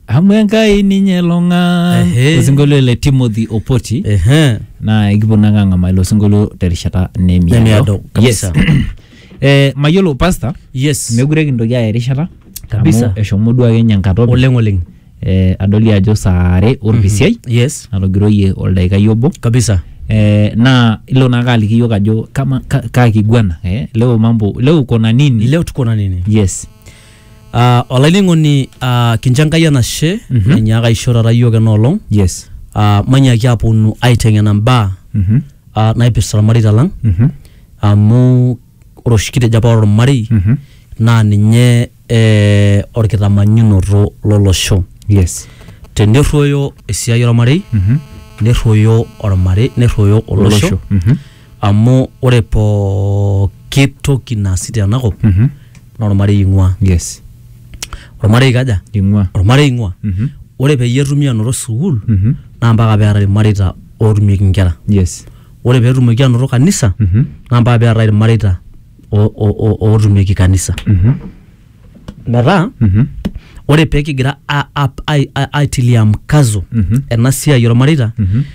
amu enkai ninye long'an Ehe. osinkolio le timothy opoti Ehe. naa ekipuo nanga ang'amaa ilo sinkolio terishata Nemiado, nemiado kabisa. eh, mayiolo pasta Yes. mekure kintoki aya erishata Kabisa. amu eshomo duo ake nye enkata openy. Oleng oleng. eh, adoli ajo saa are orpisiai Yes. natogiroyie oldaikai obo Kabisa. eh, naa ilo naake aliki yiok ajo kama ka, kaa kiguana eh, leo mambo leo kona nini Leo tuko na nini? yes Ah, olainining'oni ah, kincho enkai enashe Mhm. nanyaaka aisho taata iyiook ena olong yes ah, manyaaki aponu aiteng'ena mbaa Mhm. ah, naipirta ilmareita lang Mhm. amu ore oshi kitejo apa ore olmarei Mhm. naa ninye eh, olkitamanyunoto lolosho yes tenerruoyo esiai olmarei Mhm. nerruoyo olmarei nerruoyo olosho Mhm. amu ore pooki toki naasi tenakop Mhm. naa ormarei ing'ua yes ormarei kaja ing'ua ormarei ing'ua Mhm. ore peyie etumi anoto sukuul Mhm. naa mpaka peetae irmareita ootumieki inkera yes ore peetumoki anoto kanisa Mhm. naa mpaka peetae irmareita o- o- o- ootumieki kanisa Mhm. metaa Mhm. ore pekigira a- a- ai- ai- aitilia mkazo Mhm. ena siai ormareita Mhm.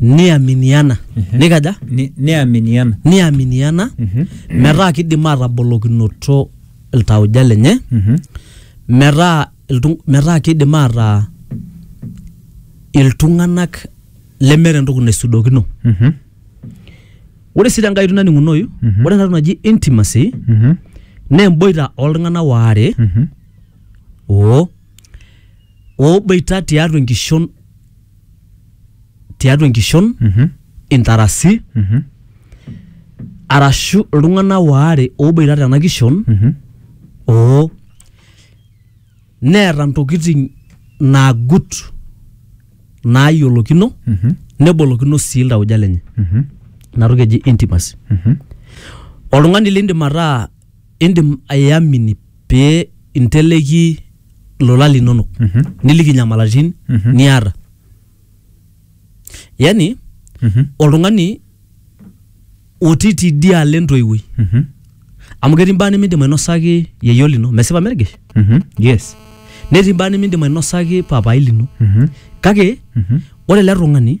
niaminiana nikaja Ni- niaminiana niaminiana Mhm. metaa kidim atabolokinoto iltauja lenye Mhm. metaa iltung- metaa kidim ataa iltung'anak lemeeta entoki naisudokino Mhm. ore sii tenkai oitoi naning'unoyu Mhm. ore enatoki naji intimacy Mhm. naa emboita oltung'anak waare Mhm. oo ooboita tiatua enkishon tiatua enkishon Mhm. intarasi Mhm. arashu iltung'anak waare ooboita tena kishon Mhm. oo neeta ntokitin naagut naayiolokino Mhm. nebolokino sii iltauja lenye Mhm. ina toki eji intimacy Mhm. oltung'ani lindim ataa Indim aiamini pee inteleki ilolan linono niliki inyamalaritin niata. Yani oltung'ani otii tidialo entoiwuoi amu ketii imbaa nimindim ainosaki yieyio lino, mesipa mergesh? Yes. Netii imbaa nimindim ainosaki papaai lino kake ore ele tung'ani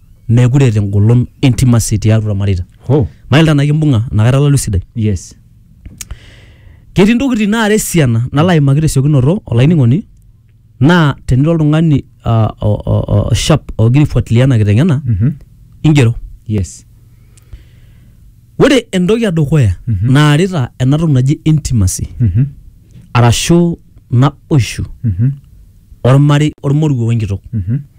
meekure eeta engolon intimacy tiatua irmareita Ho. mail tanaa kimbung'a inakata lalu sidai Yes. ketii ntokitin naara esiana nalo aimaki tesiokinoto olainining'oni naa tenira oltung'ani ah, o- o- o- sharp ogira aifuatilia ena kiteng'ena Mhm. ingero Yes. ore entoki edukuya Mhm. naarita ena toki naji intimacy Mhm. arashu naboishu Mhm. ormarei ormoruo wenkitok Mhm.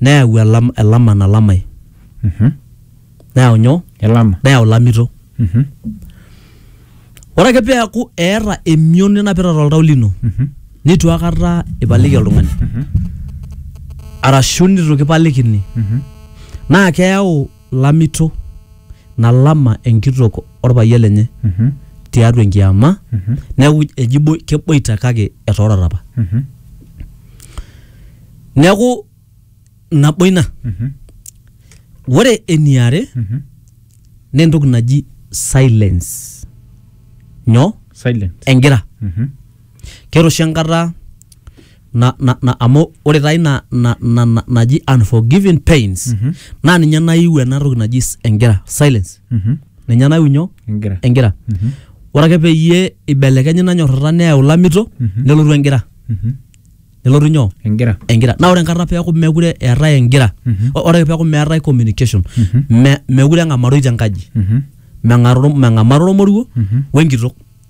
Neyau elam, elama nalamai. Neyau nyoo? Elama. Neyau ilamito. Ore ake peeku eeta emion ninapita toltau lino nitu akata ipaliki oltung'ani arashu nitu kipalikini naa keyau lamito nalama enkitok orpayian lenye Mhm. tiatua enkiama Mhm. neeku eji bo- keboita kake etoorata apa Mhm. neeku nabo ina Mhm. ore eniare Mhm. naa entoki naji silence nyoo Silent. engira Mhm. keeta oshi enkata na, na, na, amu ore taa ina na, na, na, naji unforgiving pains mm -hmm. naa ninye naiu ena toki naji s- engira silence mm -hmm. ninye naiu nyoo engira engira mm -hmm. ore ake peyie ibelekenye ina nyorrata neyau lamito mm -hmm. nelotu engira mm -hmm. nelotu nyoo engira engira na ore enkata peeku mekure eetae engira Mhm. o- ore peeku meetae communication Mhm. me, mekure eng'amaroi tenkaji Mhm. meng'aroro- meng'amaroro moruo Mhm. wenkitok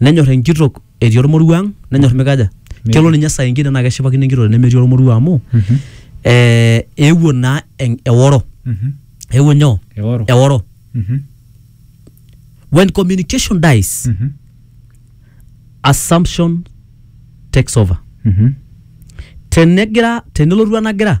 Nenyor enkitok etii ormoruo ang', nenyor mikaja? Metii. Kelo ninye saa ingine naake eshipakino enkitok tenemetii ormoruo amu ee eewuo naa en- eworo. Mhm. Eewuo nyoo? Eworo. Eworo. Mhm. When communication dies, Mhm. assumption takes over. Mhm. Tenegira tenelotu enagira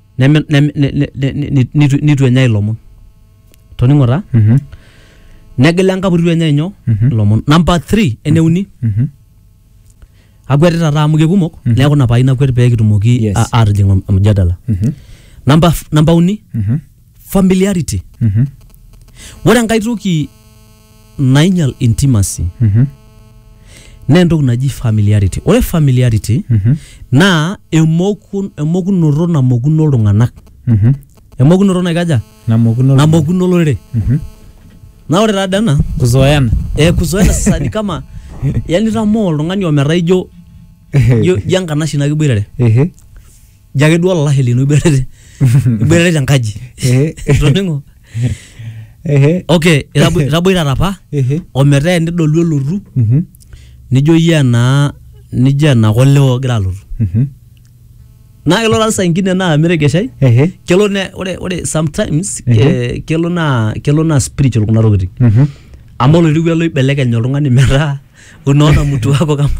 neme- neme- ne- ne- ne- ne- nitu nitu enyai ilomon toning'o taa Mhm. negila enkapu itu enyai nyoo Mhm. ilomon namba 3 eneuni Mhm. akwetita taa amu kekumok neeku ina paai nakwet pee kitumoki Yes. a- aatijing om- omjadala Mhm. namba f- namba uni Mhm. familiarity Mhm. ore enkae toki nainyal intimacy Mhm. naa entoki naji familiarity ore familiarity Mhm. naa emokun, emokunoto namokuno iltung'anak Mhm. emokunoto naikaja Namokuno. namokuno olorere Mhm. naa ore taada ena Kuzoeana. eh, kuzoena sasa ni kama yani tamoo oltung'ani ometaa ijo ijo ijo enkanashe nakiboitare Ehe. ijo ake duo olalashe lino iboitare iboitare tenkaji Ehe. itoning'o Ehe. okay itabo- itaboitata apa Ehe. ometaa enidolu elotu Mhm. nijo iyie enaa nijo ena kole ogira alotu Mhm. naa kelo taa saa ingine naa miregeshai Ehe. kelo ne ore ore sometimes Ehe. eh, kelo naa kelo naa spiritual kuna tokitin Mhm. amu oloiruko ele oibelekeny oltung'ani metaa unaona mtu wako kama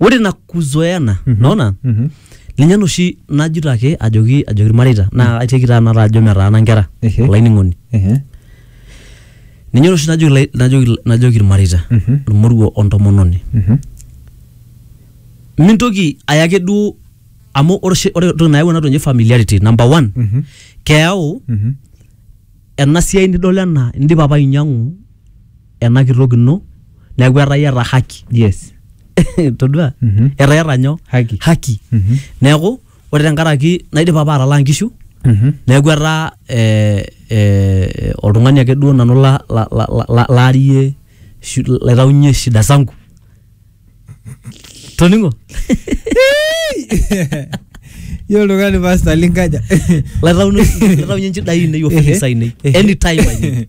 ore na kuzoea ena Mhm. naona Mhm. ninye naa oshi najito ake ajoki ajoki irmareita naa aiteki taa nanu ajo metaana nkera Ehe. olainining'oni Ehe. ninye oshi najoki lai- najoki najoki irmareita Mhm. ormoruo ontomononi Mhm. mintoki aya ake duo amu ore oshi- ore entoki nayau ena toki naji familiarity number one Mhm. keyau Mhm. ena siai nidol ena indipa apa ainyiang'u ena kitok ino neeku etaa iyata haki yes todua Mhm. etaa iyata nyoo Haki. haki Mhm. neeku ore tenkaraki naidipa apa atalaa nkishu Mhm. neeku etaa eh, eh, oltung'ani ake duo nanu la- la- la- la- la- laarie shi- laitaunyie shida zangu toning'o Yiolo oltung'ani pasta linkaja laitaunyie nchidai ainei ofisi ainei anytime I need.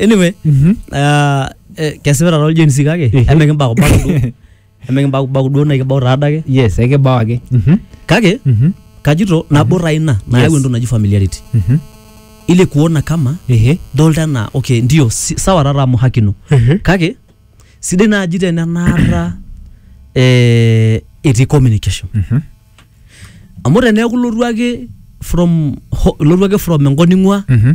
anyway Mhm. ah, eh, kesipa taata oljen si kake Ehe. emikimbakubaku duo emikimbakubaku duo naikibau taada ake yes ekibao ake Mhm. kake Mhm. kajito nabo taa ina nayau Yes. entoki naji familiarity Mhm. ile kuona kama Ehe. dolta enaa okay ndio si, sawa taata amu haki ino Ehe. kake sidai naaji tenenaata eh, etii communication Mhm. amu teneeku ilotu ake from ho- ilotu ake from enkop ning'ua Mhm.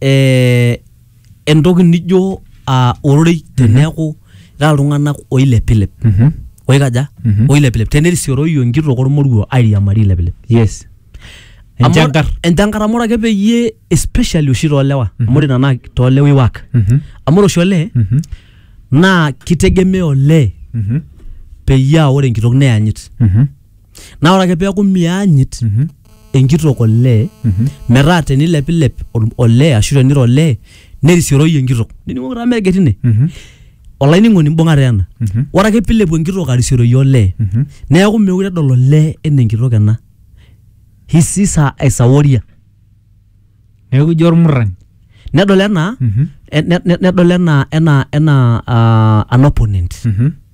eh, entoki nijo ah, ororei teneeku ira iltung'anak oilepilep Mhm. oikaja Mhm. oilepilep tenerisioroyu enkitok ormoruo airiamari ilepilep yes Amu- enchankar enchankar amu ore ake peyie especially oshi toolewa amu ore nana toolewa iwak Mhm. amu ore oshi olee Mhm. naa kitegemea olee Mhm. peyie aa ore enkitok neyanyit Mhm. naa ore ake peeku mianyit enkitok olee metaa tenilepilep ol- olee ashu teniro olee nerisioroyu enkitok nining'oki taa meeget ine olainining'oni mbung'a taa ena ore ake pilepu enkitok arisioroyu olee neeku meekure edol olee enaa enkitok ena he sees her as a warrior neeku ijo ormurrani nedol enaa ne- ne- nedol enaa enaa enaa ah, an opponent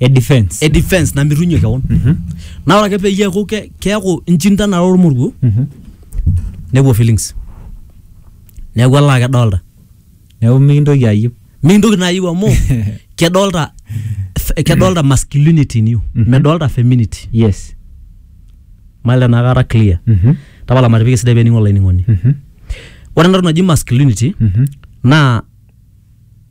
e defense e defense namirunye kewon Mhm. naa ore ake peyie eeku ke- keeku inchindana ormoruo Mhm. nepuo feelings neeku elaa kedolta neeku mikintoki ayieu mintoki naa ayieu amu kedolta f- kedolta masculinity in you Mhm. medolta femininity yes mali enakata clear Mhm. tapala matipik esidai pening olainining'oni Mhm. ore entoki naji masculinity Mhm. naa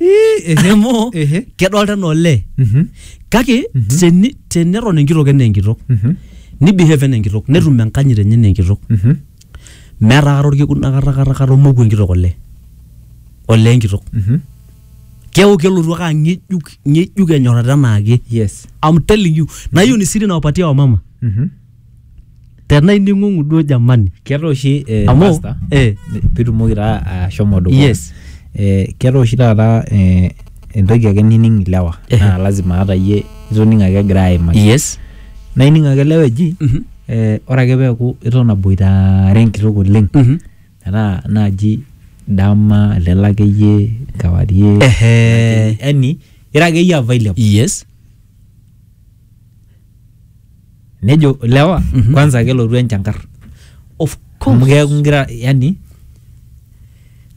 Ehe, amu ehe. kedolta enaa olee Mhm, kake teni- teneton enkitok enaa enkitok mhm, nibehave enaa enkitok netum enkanyit enye enaa enkitok mhm. meeta kata orkekun akata kata kata omoku enkitok olee olee enkitok Mhm. keeku kelotu ake ang'ejuk ng'ejuk enyorrata enaake Yes. I'm telling you nayieu nisiri nawapatia wamama Mhm. Tena ining'ung'u duo jamani. Keeta oshi eh, Amu, pastor, eh. pitumoki taa ashomo dukuya Yes. eh, keeta oshi taata eh, entoki ake nining ilewa Ehe. naa lazima ata iyie itoning ake egira aimaki Yes. naa ining ake ilewa eji Mhm. eh, ore ake peeku iton aboitare enkitok oleng Mhm. metaa naaji dama lelo akeyie kewarie Ehe. yani ira akeyie available Yes. nejo lewa Mhm. kwanza kelotu enchankar of amu course keeku ngira yani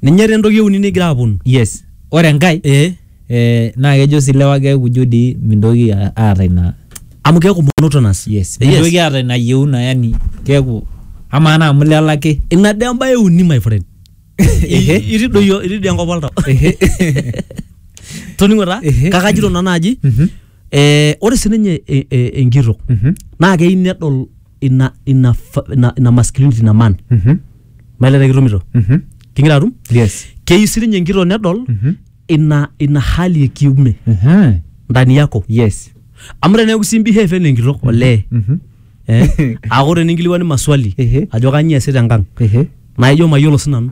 ninye taa entoki euni nigira aponu yes ore enkae eh eh, naa kejo si lewa keeku jo dii mintoki a- aata ina amu keeku monotonous yes Eh, mintoki aata ina yieuna yani keeku amaa naa amu lelo ake ina dee embae euni my friend Ehe. I- itii doi itii doi enkop oltau Ehe. toning'o taa Ehe. kakajito nanu aji Mhm. eh, ore sininye e- e- enkitok Mhm. naa keyieu nedol ina ina fa- ina, ina masculinity ina man Mhm. maileta kitumito Mhm. kingira atum Yes. keyieu sininye enkitok nedol Mhm. ina ina hali ya kiume Aha. ndani yako Yes. amu teneeku si behave enaa enkitok olee Mhm. eh, aaku teninkiliwani maswali Ehe. ajo kanyio eesita enkang Ehe. naa ijo mayiolo sinanu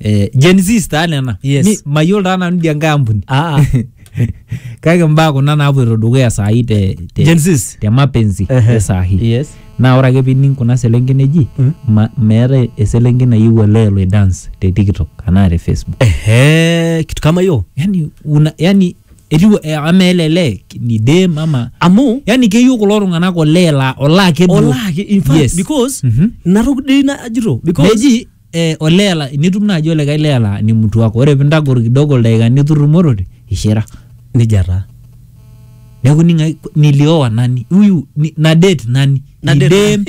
eh, Gen Z taa nena Yes. Mi- mayiolo taa nanu idia nkae ampuni Ah, ah. kake mbaa kuna naapoito dukuya saai te, te, Gen Zs. te mapenzi Ehe. e saai Yes. naa ore ake pining kuna selenken eji Mm. ma, meetae eselenken nayieu olee elo dance te tiktok anaa te facebook Ehe, kitu kama hiyo. yani, una, yani etiu eh, ama ele lee ni dem ama Amu yani keyieu kulo tung'anak olee la olaa ake duo. olaki in fact Yes. because Mhm. naruk dei na ajito because meji eh, olee la- nitum naaji olikae lee laa ni mtu wako ore pintagor kidogo ildaikani iturrumorote ishira nija taa neeku ning'ai niliowa nani huyu ni, na date nani Na date Idem.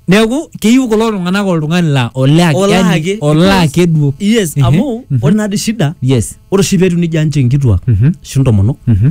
neeku keyieu kulo tung'anak oltung'ani laa olee ake- Olaa yani, ake, olaa because- ake duo yes Ehe, amu mhm. ore naadi shida yes ore oshi peetiu nija nche nkituak Mhm. ashu ntomonok Mhm.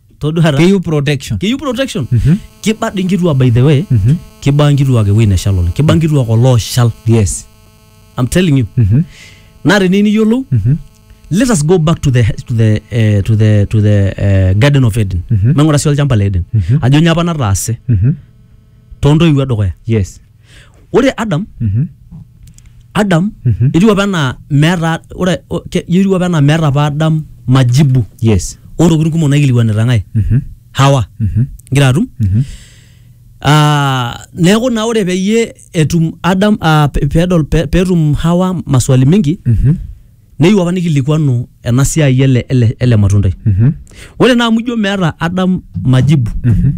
todua taata. keyieu protection keyieu protection Mhm. kiba dii nkituak by the way Mhm. kiba nkituak ewuei neshal oleng kiba nkituak olooshal yes I'm telling you Mhm. naa teniyieu niyiolou Mhm. let us go back to the to the eh, to the to the eh, garden of Eden Mhm. maing'ura sii olchamba le Eden Mhm. ajo nyoo apa nataase Mhm. toontoiwuo edukuya yes ore adam Mhm. adam Mhm. etiu apa enaa meeta ore o- ke- etiu apa enaa meeta apa adam majibu yes oorokitin kumok naikilikuanita ng'ae Mhm. hawa Mhm. ngira atum Mhm. Ah, neeku naa ore peyie etum adam ah, pe- pedol pe- petum hawa maswali mingi Mhm. neyieu apa nikilikuanu ena siai ele, ele, ele matundai Mhm. ore naa amu ijo meeta adam majibu Mhm.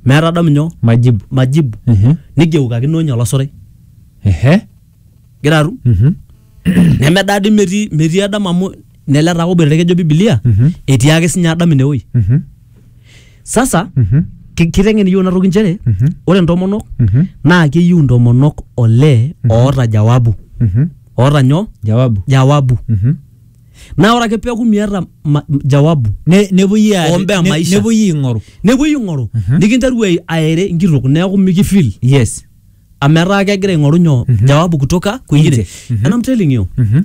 meeta adam nyoo majibu majibu Mhm. nigeukakino ninye olosorai ehe gira atum Mhm. nemedaa di metii metii adam amu nele taa oboitare kejo bibilia Mhm. etii ake sinye adam inewoi Mhm. sasa Mhm. ki- kiteng'en iyiok inatoki nchere Mhm. ore ntomonok Mhm. naa keyieu ntomonok olee oota jawabu Mhm. oota nyoo jawabu jawabu Mhm. naa ore ake peeku miata ma- jawabu Ne- nepuoi aa- Ombea ne- maisha. nepuoi aing'oru nepuoi ing'oru nikinteru ai- aere nkitok neeku mikifil yes amu etaa kegira aing'oru nyoo jawabu kutoka kwingine Nje. Mhm. and I'm telling you Mhm.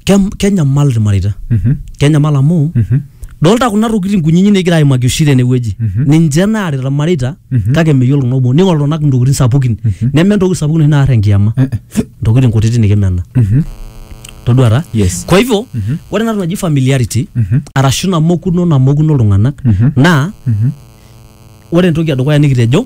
kem- kenyamal ilmareita Mhm. kenyamal amu Mhm. dolta kuna tokitin kunyinyik nigira aimaki oshi tenewueji Mhm. ninche naarita ilmareita Mhm. kake meyiolo kuna kumok ning'oru iltung'anak intokitin sapukin Mhm. neme entoki sapuk noshi naar enkiyama Eh, eh. intokitin kutitik nikimena Mhm. toduata Yes. kwa hivyo Mhm. ore enatoki naji familiarity Mhm. arashu namokuno namokuno iltung'anak Mhm. naa Mhm. ore entoki edukuya nikitejo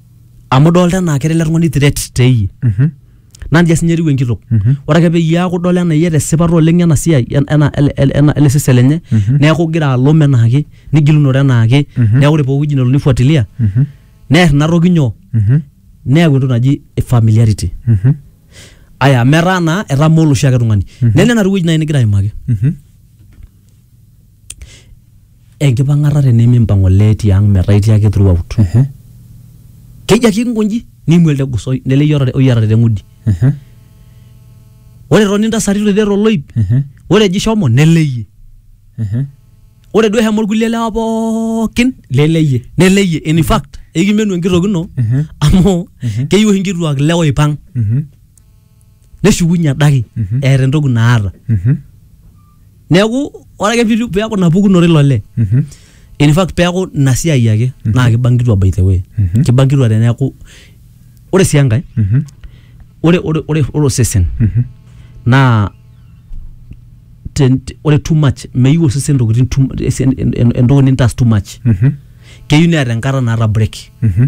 amu idolta enaa kera ele tung'ani threat teyie Mhm. naa nijia sinye etiu enkitok Mhm. ore ake peyie eaku idol enaa iata esipata oleng ena siai en- ena ele- ele- ena- ele sesen lenye Mhm. neeku igira alom enaake nigilunore enaake Mhm. neeku ore pooki wueji nelo nifuatilia Mhm. neer ina toki nyoo Mhm. neyau entoki naji familiarity Mhm. aya metaa naa etamoo oloshi ake tung'ani Mhm. nena ena wueji naaji nigira aimaki Mhm. enkipang'ata tenimimpang olee tiang metaa itii ake throughout keji ake inkonji niimu elde gus oi- lele oyiarare oyiarare teng'udi ore etoni intasati toitie toloip ore eji shomo nelo eyie ore duo eshomo irkulie lewa pookin lele iyie nelo eyie in fact ekimenu enkitok ino amu keyieu oshi inkituak ilewa oipang neshukunye adake eeta entoki naata neeku ore ake pitu- peeku ina pukunoto ilo lee Mhm. in fact peeku ina siai ake naa kiba nkituak by the way Mhm. kiba nkituak teneeku ore sii enkae Mhm. ore ore ore ore osesen Mhm. naa ten- te- ore too much meyieu osesen ntokitin too mu- esi- en- en- entoki nintaas too much Mhm. keyieu neeta enkata naata break Mhm.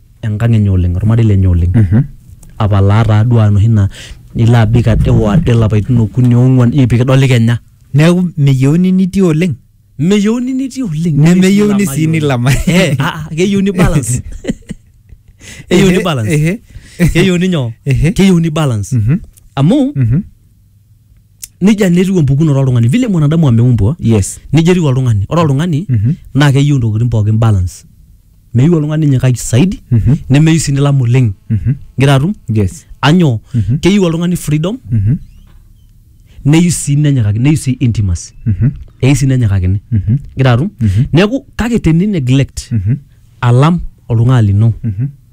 enkang enye oleng ormarei lenye oleng mm -hmm. apalaa taaduo anoshi naa nilo abik ade oade lapaitin okuni ong'uan io pikidoli kenya neeku meyieuni nitii oleng meyieuni nitii oleng nemeyieuni sii nilama eh, ah, ah, keyieuni balance keyieuni balance keyieuni nyoo keyieuni balance mhm. amu mhm. nija naa etiu empukunoto oltung'ani vile mwanadamu ameumbwa yes nija etiu oltung'ani ore oltung'ani Mhm. naa keyieu intokitin pookin balance meyieu oltung'ani nyikaki saidi Mhm. nemeyieu sii nilam oleng Mhm. ngira atum yes anyoo Mhm. keyieu oltung'ani freedom Mhm. neyieu sii nenyikaki neyieu sii intimacy Mhm. eyieu sii nenyikakini Mhm. ngira atum Mhm. neeku kake teni neglect Mhm. alam oltung'ani lino Mhm.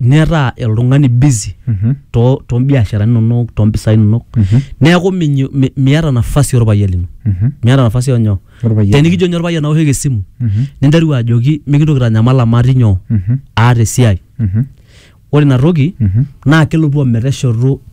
netaa oltung'ani busy Mhm. to to mbiasharani inonok to mpisai inonok Mhm. neeku minyo- mi- miata nafasi orpayian lino Mhm. miata nafasi onyo Orpayian. tenikijo nye orpayian aoshoki esimu Mhm. ninteru ajoki mikintoki tanyamal amu atii nyoo Mhm. aata esiai Mhm. ore ina toki Mhm. naa kelotu ometeshoto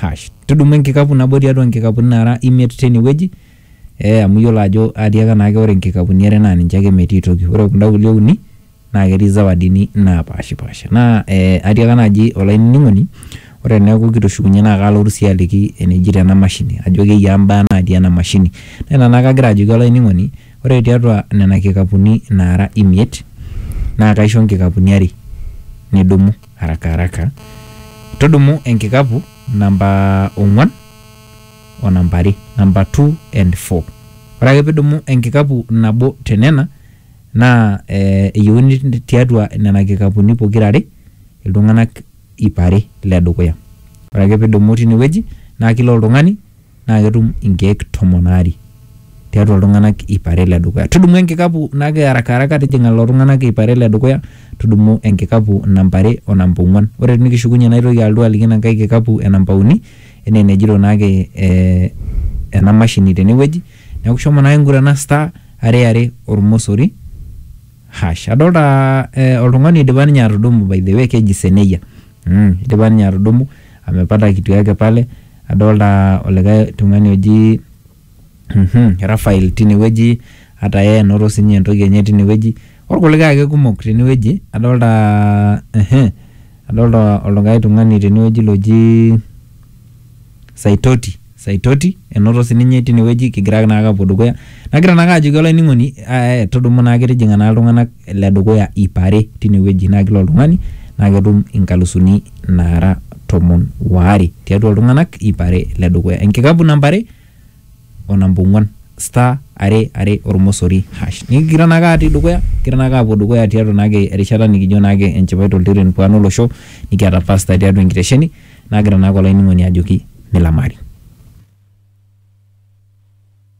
hash. Tudumu enkikapu nabo tiatua nkikapuni naara imiet teine wueji ee amu iyiolo ajo atiaka naake ore nkikapuni are naa ninche ake metii toki. Ore kunda kulie uni naake etii zawadini napaashipaasha. Naa ee atiaka naaji olainining'oni ore eneeku kitushukunye naa kaalotu sii aliki enejito ena mashini ajo keyiaa mbaa natii ena mashini. Naa ina naake agira ajoki olainining'oni ore tiatua nena kikapuni naara imiet naa kaisho nkikapuni are nidumu. haraka haraka tudumu enkikapu namba ong'uan o namba are namba 2 and 4 ore ake pidumu enkikapu nabo tenena naa eh, eyieuni tiatua nena kikapuni pokira are iltung'anak iip are ledukuya ore ake pidumu tinewueji naa kila oltung'ani naa ketum inkeek tomon aare tiatua iltung'anak ip are le dukuya. Tudumu enkikapu nake haraka haraka tijing'a lelo tung'anak ip are le dukuya, tudumu enkikapu namba are o namba ong'uan. Ore tinikishukunye naitoki alotu aliki ina nkae kikapu e namba uni enaa enejito naake ee ena mashini tene wueji. Neeku shomo naake ng'urana star are are ormosori hash. Adolta ee oltung'ani oidipa ninye atudumu by the way keji Seneia mmh, idipa ninye atudumu amepata kitu yake pale. Adolta olikae tung'ani oji Raphael tinewueji, ata yeye enoto sinye entoki enye tinewueji, orkulikae ake kumok tenewueji. Adolta adolta olikae tung'ani tenewueji loji Saitoti, Saitoti enoto sininye tinewueji kigira naake apuo dukuya. Nagira naake ajoki olainining'oni eh, tudumu naake tijing'a naa iltung'anak le dukuya iip are tine wueji naa kila oltung'ani naa ketum inkalusuni naara tomon waare tiatua iltung'anak iip are le dukuya. Enkikapu namba are o namba ong'uan star are are ormosori hash. Nikigira naake atii dukuya kigira naake aapuo dukuya tiatua naake erishata nikijo naake enchipai toltiren pwaan olosho nikiata pasta tiatua enkitesheni nagira naake olainining'oni ajoki milamari